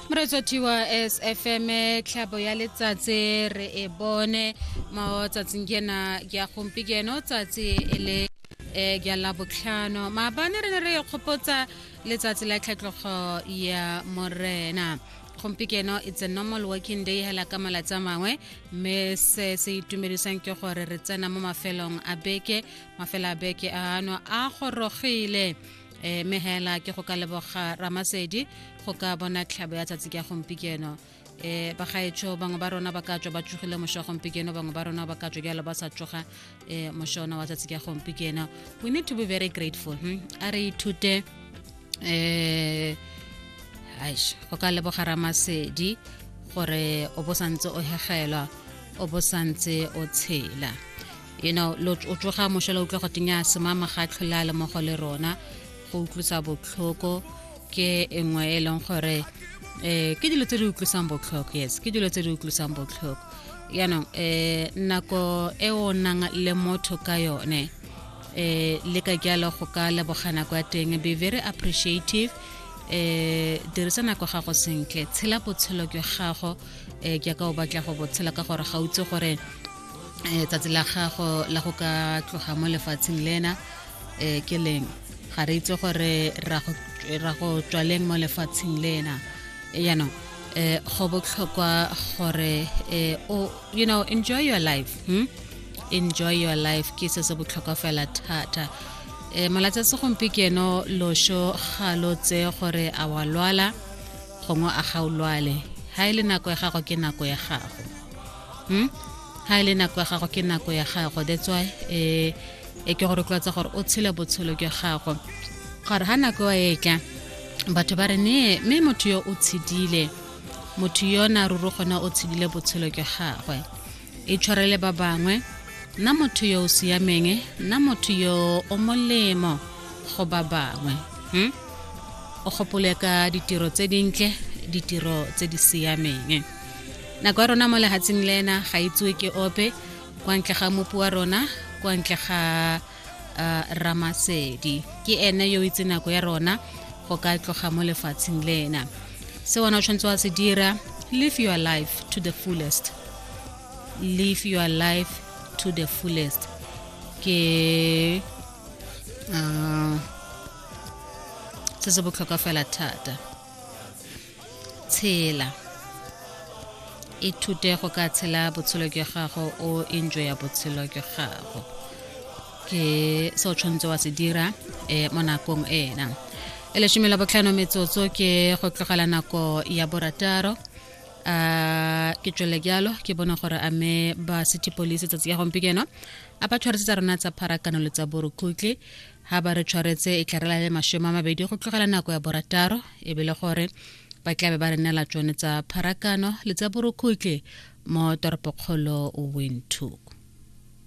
moretso thiwa sfm tlhabo ya letsatsi re e bone mo tsatsing ke na ke ya gompikeno tsatsi e le um ke la botlhano maabane re ne re e kgopotsa letsatsi la tlhatlogo ya morena gompikeno it's a normal working day hela ka malatsi a mangwe mme se se itumedisang ke gore re tsena mo mafelong a beke mafelo a beke ano a gorogile e me hela ke go ka leboga ramasedi go ka bona tlhabo ya tsatsi ka gompikeno eh ba gaetsho bangwe ba rona ba ka tswa ba tsogile mosho gompikeno bangwe ba rona ba ka tswa jalo ba sa tsoga eh moshona wa tsatsi ka gompikeno we need to be very grateful hmm? a re ithute eh aish go ka leboga ramasedi gore o bo santse o hegelwa o bo santse o tshela you know lo o tsoga mošela utlwa go tenya semama ga tlholela le mogo le rona go utlwisa botlhoko ke engwe e leng gore eh ke dilo tse di utlwisang botlhoko yes ke dilo tse di utlwisang botlhoko yaanong eh nako e o nang le motho ka yone eh le ka jalo go ka lebogana kwa teng be very appreciative eh dirisa nako gago sentle tshela botshelo jwa gago eh jaaka o batla go botshela ka gore ga utse gore eh, tsatsi la gago la go ka tloga mo lefatsheng lena eh, ke leng ga re itse gore ra go tswaleng mo lefatsheng lena yaanong eh, go botlhokwa gore eh, o you know enjoy your life hmm? enjoy your life ke se se botlhokwa fela thata e malatsi a segompiekeno loso ga lo tse gore a wa lwala gongwe a ga o lwale ga e le nako ya gago ke nako ya gago hmm? ha e le nako ya gago ke nako ya gago that's why eh e ke gore tlwatsa gore o tshele botshelo ke gago gore ha nako wa etla batho ba re ne mme motho yo o tshedile motho yo na ruru gona o tshedile botshelo ke gagwe e tshwarele ba bangwe nna motho yo o siameng nna motho yo o molemo go ba bangwe hmm? o gopole ka ditiro tse dintle ditiro tse di siameng nako ya rona mo lehatsheng le ena ga itsewe ke ope kwa ntle ga mopu wa rona kwa ntle ga uh, ramasedi ke ene yo itse nako ya rona go ka tloga mo lefatsheng le ena se wena o tshwanetse wa se dira live your life to the fullest live your life to the fullest ke uh, se se botlhokwa fela thata tshela ithute go ka tshela botshelo jwa gago o enjoy ya botshelo jwa gago ke se o tshwanetse wa se dira um mo nakong ena e lesome la botlhano metsotso ke go tlogela nako ya borataro a ke tswele jalo ke bone gore a me ba city police tsatsi ya gompieno a ba tshwarisetsa rona tsa pharakano le tsa borukhutlhe ga ba re tshwaretse e tla re lale masome a mabedi go tlogela nako ya borataro e be le gore ba tla be ba re neela tsone tsa pharakano le tsa borokhutle mo toropokgolo windhoek